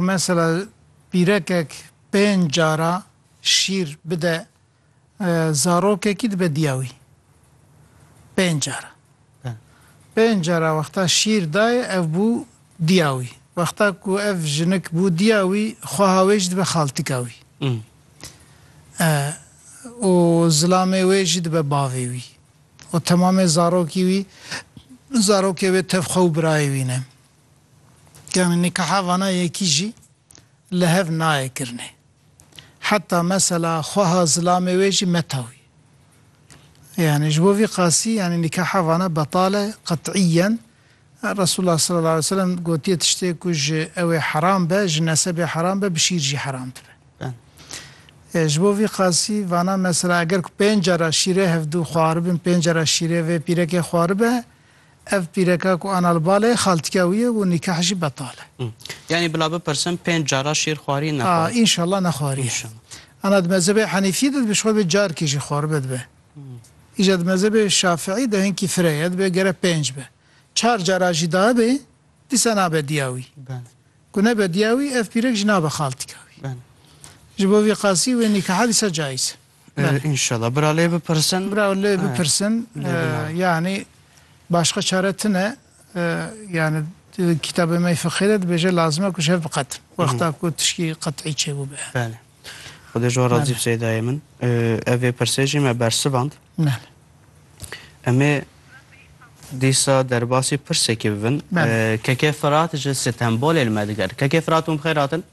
Mesela pîrekek pênc cara şîr bide zarokekî dibe diya wî. Pênc cara. Pênc cara wexta şîr dayê ev bû diya wî. Wexta ku ev jinik bû diya wî xweha wê jî dibe xaltika wî. Û zilamê wê jî dibe bavê wî. Û temamê zarokî wî zarokê wê tev xwe û birayê wî ne. Yanî nîkaha vana yekî jî li hev nayê kirinê. Heta mesela xweha zilamê wê jî metawî. Yanî ji bo vî qasî yanî nîkaha vana betal e qet'îyen. Resûlullah selellahu aleyh ve selem gotiye tiştê ku ji ewê heram be, ji nesebê heram be, bi şîr jî heram dibe. E, ji bo vî qasî vana mesela eger ku pênc cara şîrê hevdû xwaribin, pênc cara şîrê vê pîrekê xwaribe, Ev pîreka ku Anal bal e, xaltîka wî ye û nîkah jî betal e. Yanî bila bipirsin pênc cara şîr xwarî ne xwar? Înşallah ne xwarî ye. Ana di mezhebê Henîfî de dibe ji xwe ve carkê jî xwaribe dibe. Îja di mezhebê Şafiî de hinkî fire ye dibe gere pênc be. Çar cara jî dabe dîsa nabe diya wî. Ku nebe diya wî ev pîrek jî nabe xaltîka wî. Ji bo vî qasî wê nîkaha dîsa cayîz e. Înşallah. Bira lê bipirsin. Bira lê bipirsin. Yanî başka çare tune yani kitabê me fiqhê de dibêje lazim e ku ji hev biqetin. Wexta ku tişkî qet'î çêbûbe. Belê. Xwedê ji wan razî bi Seydayê min. Ev vê pirsê jî me bersivand. Belê. Emê dîsa derbasî pirsekî bibin. Belê. Keke Firat ji sitembolê li me diger. Keke Firat hûn bi xêr hatin.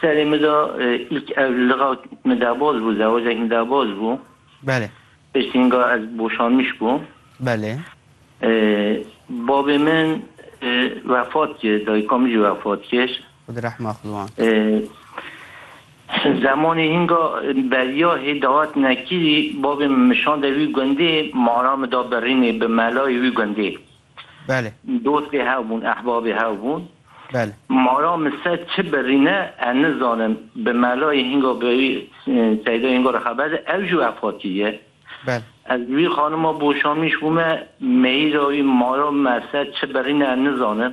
Serê min de îlk ev li Lixa min daboz bû, zewecek min daboz bû. Belê. Piştî ninga ez boşanmiş bûm. Belê. Babê min vefat kir, dayika min jî vefat kir. Xwe di rehma xwe wan. Zemanê hinga beriya hê dihatine kîrî, babê min min şande wî gundê, mara min da birînê bi melayê wî gundê. Belê. Dostê hev bûn, ehbabê hev bûn. Belê. Mala min ser çi birîne ez nizanim. Bi melayê hînga bi wî seydayê hînga re xeber de ew jî wefatî ye. Belê. Ez wî xanima boşanmîş bûme, mehîra wî, mala min ez ser çi birîne ez nizanim.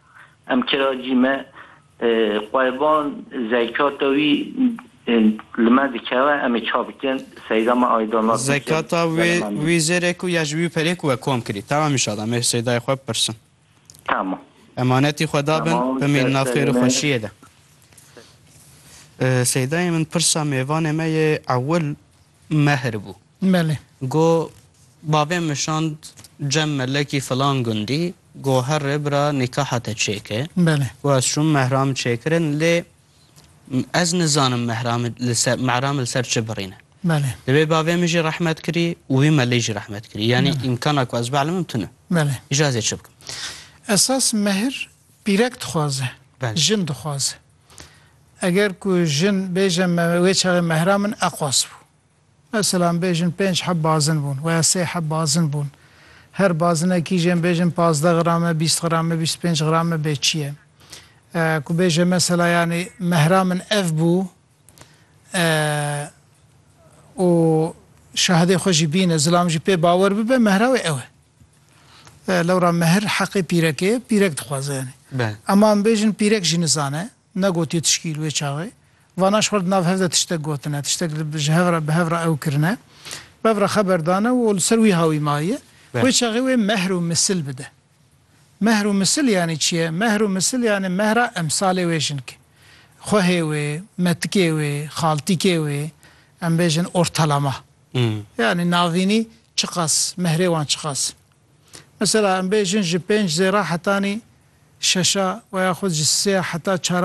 Em kiracî me. Qurban zekata wî li me dikeve em ê ça bikin. Seyda me ayda nas neke. Zekata wê wî zêrê ku ya ji wî perê ku we kom kirî. Tamam inşallah em ê seydayê xwe bipirsin. Tamam. Emanetî xwe dabin bimînin nav xêr û xweşiyê de. Seydayê min pirsa mêvanê me yê ewil mehr bû. Belê. Go bavê min şand cem melekî filan gundî, go her rêbira nîkaha te çêke. Belê. Go ez çûm mehra min çêkirin lê ez nizanim mehra min li ser mehra min li ser çi birîne. Belê. Divê bavê min jî rehmet kirî û wî melê jî rehmet kirî. Yanî îmkana ku ez bielmim tune. Belê. Îja ez ê çi bikim? Esas mehr pîrek dixwaze. Belê. Jin dixwaze. Eger ku jin bêje me wê çaxê mehra min eqwas bû. Ez selam bêjin pênc heb bazin bûn weya sê heb bazin bûn her bazine kîjên bêjin pazdeh grame bîst grame bîst û pênc grame bê çi ye ku bêje mesela yanî mehra min ev bû û şahidê xwe jî bîne zilam jî pê bawer bibe mehra wê ew e lewra mehr heqê pîrekê ye pîrek dixwaze yanî ema em bêjin pîrek jî nizane Negotiye tişkî li wê çaxê. Vana ji xwe di nav hev de tiştek gotine, tiştek li ji hev re bi hev re ew kirine. Bev re xeber dane û li ser wî hawî maye. Wê çaxê wê mehr û misil bide. Mehr û misil yanî çi ye? Mehr û misil yanî mehra emsalê wê jinke. Xwehê wê, metikê wê, xaltîkê wê, em bêjin ortalama. Yanî navînî çiqas, mehrê wan çiqas in. Mesela em bêjin ji pênc zêra hetanî şeşa we ya xwe ji sê ya heta çar a.